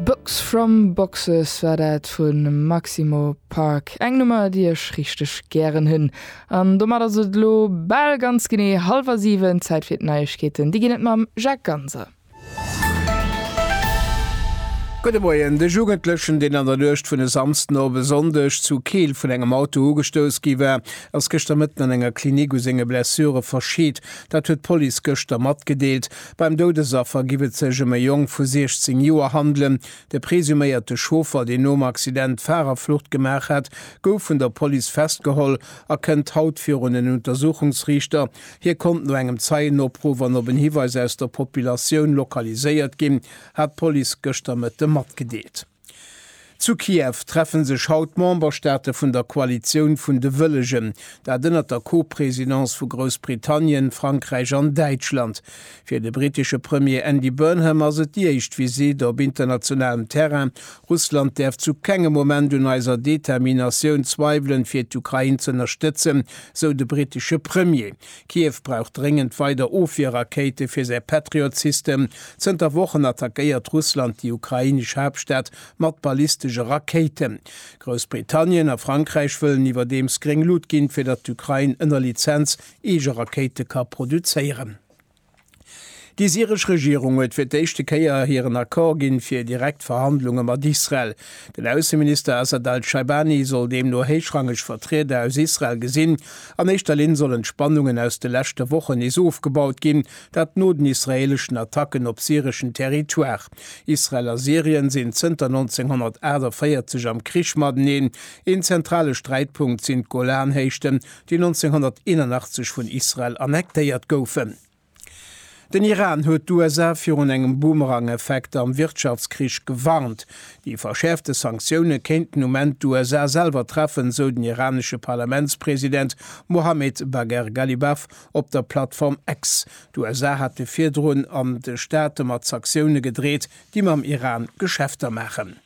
Box From Boxes war dat vu Maximo Park, eng Nummer déi ech richteg gären hunn. An domat ass et elo bal ganz genee hallwer 7, Zäit fir d'Neiegkeeten, déi ginn et mam Jacques Ganser. Gudde Moien, De Jugendlechen, deen an der Nuecht vun e Samsden op e Sonndeg zu Keel vun engem Auto ugestouss gi war, ass gëschter Mëtten an enger Klinik u senge Blessure verscheet. Dat huet d'Police gëschter matgedeelt. Beim Doudesaffer giff et sech ëm e Jong vu 16 Joer handelen. De presuméierte Chauffer, deen nom Accident d'Farerflucht gemaach hat, gouf vun der Police festgeholl a kënnt haut virun en Untersuchungsriichter. Hie konnt no engem Zeienopruff an op en Hiweis aus der Populatioun lokaliséiert ginn, hat d'Police gëschter Mëtte matgedeelt. Zu Kiew treffe sech haut d'Memberstaate vun der Koalitioun vun de Wëllegen, dat ënnert der Co-Presidence vu Groussbritannien, Frankräich an Däitschland. Fir de brittesche Premier Andy Burnham ass et déi éischt Visitt op internationalem Terrain. Russland däerf zu kengem Moment un eiser Determinatioun zweiwelen, fir d'Ukrain z'ënnerstëtzen, sou de brittesche Premier. Kiew brauch dréngend weider Ofwierrakéite fir säi Patriot-System. Zënter Wochen attackéiert Russland déi ukrainesch Haaptstad mat ballistesche Rakéiten. Groussbritannien a Frankräich wëllen iwwerdeems gréng Lut ginn, fir datt d'Ukrain ënner Lizenz eege Rakéite ka produzéieren. Déi syresch Regierung huet fir d'éischte Kéier hiren Accord ginn, fir direkt Verhandlunge mat Israel. Den Ausseminister Assad al-Shaibani soll deemno héichrangeg Vertrieder aus Israel gesinn. An éischter Linn sollen d'Spannungen aus de leschte Wochen nees ofgebaut ginn, dat no den israeeleschen Attacken op syreschen Territoire. Israel a Syrien sinn zënter 1948 am Krich mateneen. Een zentrale Sträitpunkt sinn d'Golanhéichten, déi 1981 vun Israel annektéiert goufen. Den Iran huet d'USA virun engem Boomerang-Effekt am Wirtschaftskrich gewarnt. Déi verschäerfte Sanktioune kéinten um Enn d'USA selwer treffen, sou den iranesche Parlamentspresident Mohammed Bagher Ghalibaf op der Plattform X. D'USA hate virdrun an de Staate mat Saktioune gedreet, déi mam Iran Geschäfter maachen.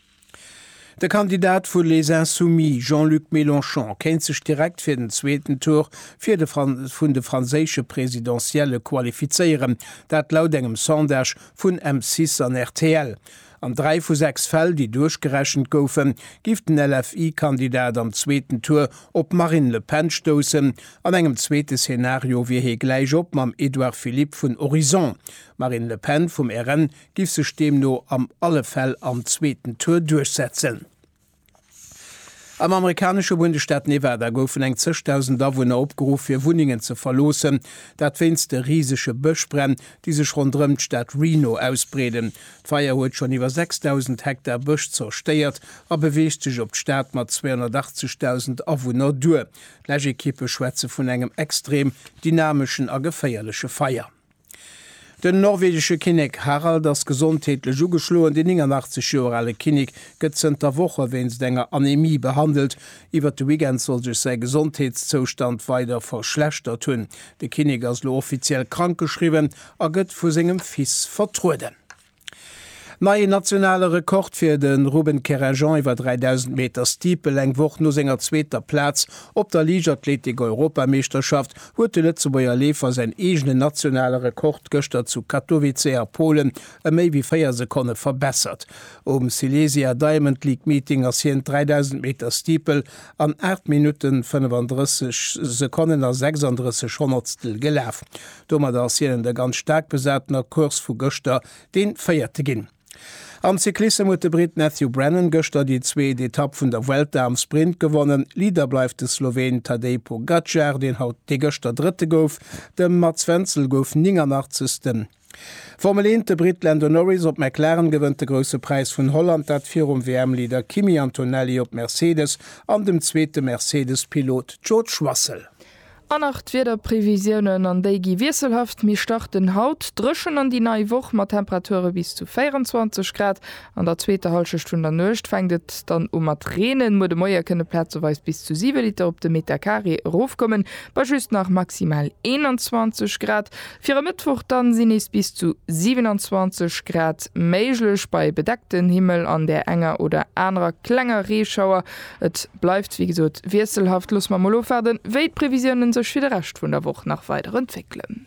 De Kandidat vu Les Insoumis, Jean-Luc Mélenchon, kéint sech direkt fir den zweeten Tour fir de vun de franséische Presidentielle qualifizéieren, dat laut engem Sondage vun M6 an rtl. An dräi vu sechs Fäll, déi duerchgerechent goufen, giff den LFI-Kandidat am zweeten Tour op d'Marine Le Pen stoussen. An engem zweete Szenario wier hie gläich op mam Edouard Philippe vun Horizons. D'Marine Le Pen vum RN giff sech deemno am alle Fäll am zweeten Tour duerchsetzen. Am amerikanesche Bundesstaat Nevada goufen eng zeg dausend Awunner opgeruff fir Wunnengen ze verloossen, dat wéinst de risege Bëschbränn, déi sech ronderëm d'Stad Reno ausbreeden. D'Feier huet schonn iwwer sechs dausend Hektar Bësch zerstéiert a beweegt sech op d'Stad mat 280 dausend Awunner duer. D'Läschekippe schwätze vun engem extrem dynameschen a geféierleche Feier. Den norwegesche Kinnek Harald ass gesondheetlech ugeschloen. Deen 89 Joer ale Kinnek gëtt zënter Woche wéinst enger Anemie behandelt. Iwwert de Weekend soll sech säi Gesondheetszoustand weider verschlechtert hunn. De Kinnek ass elo offiziell krankgeschriwwen a gëtt vu sengem Fils vertrueden. Neien nationale Rekord fir de Ruben Querrejean iwwer 3.000 Meter Steeple. Eng Woch no senger zweeter Plaz op der Liichtathletik-Europameeschterschaft huet de Lëtzebuerger Leefer säin eegene nationale Rekord gëschter zu Katowice a Polen ëm méi wéi 4 Sekonne verbessert. Um Silesia Diamond League Meeting ass hien d'3.000 Meter Steeple an 8 Minutten 35 Sekonnen a 36 Honnertstel gelaf. Domadder ass hinnen de ganz staark besatener Course vu gëschter dee Véierte ginn. Am Cyclissem huet de Britt Matthew Brennan gëschter déi zweet Etapp vun der Vuelta am Sprint gewonnen. Leader bleift de Sloween Tadej Pogacar, deen haut dee gëschter Drëtte gouf. De Mats Wenzel gouf 89. Formel 1, De Britt Lando Norris op McLaren gewënnt de Grousse Präis vun Holland, dat virum WM-Leader Kimi Antonelli op Mercedes an dem zweete Mercedes-Pilot George Russell. An nach d'Wiederprevisiounen, an déi gi wiesselhaft méi starten, Haut dréchen an déi nei Woch mat Temperature bis zu 24 Grad. An der zweeter Hallschecht vun der Nuecht fänkt et dann u mat reenen, muer de Moie kënne plazeweis bis zu 7 Liter op de Metercarré erofkommen, bei just nach maximal 21 Grad. Fir e Mëttwoch dann sinn nees bis zu 27 Grad méiglech, bei bedeckten Himmel an där enger oder anerer klenger Reeschauer. Et bleift wéi gesot wiesselhaft. Loosse mer mol ofwaarden, wéi d'Previsiounen sech fir de Rescht vun der Woch nach weider entwéckelen.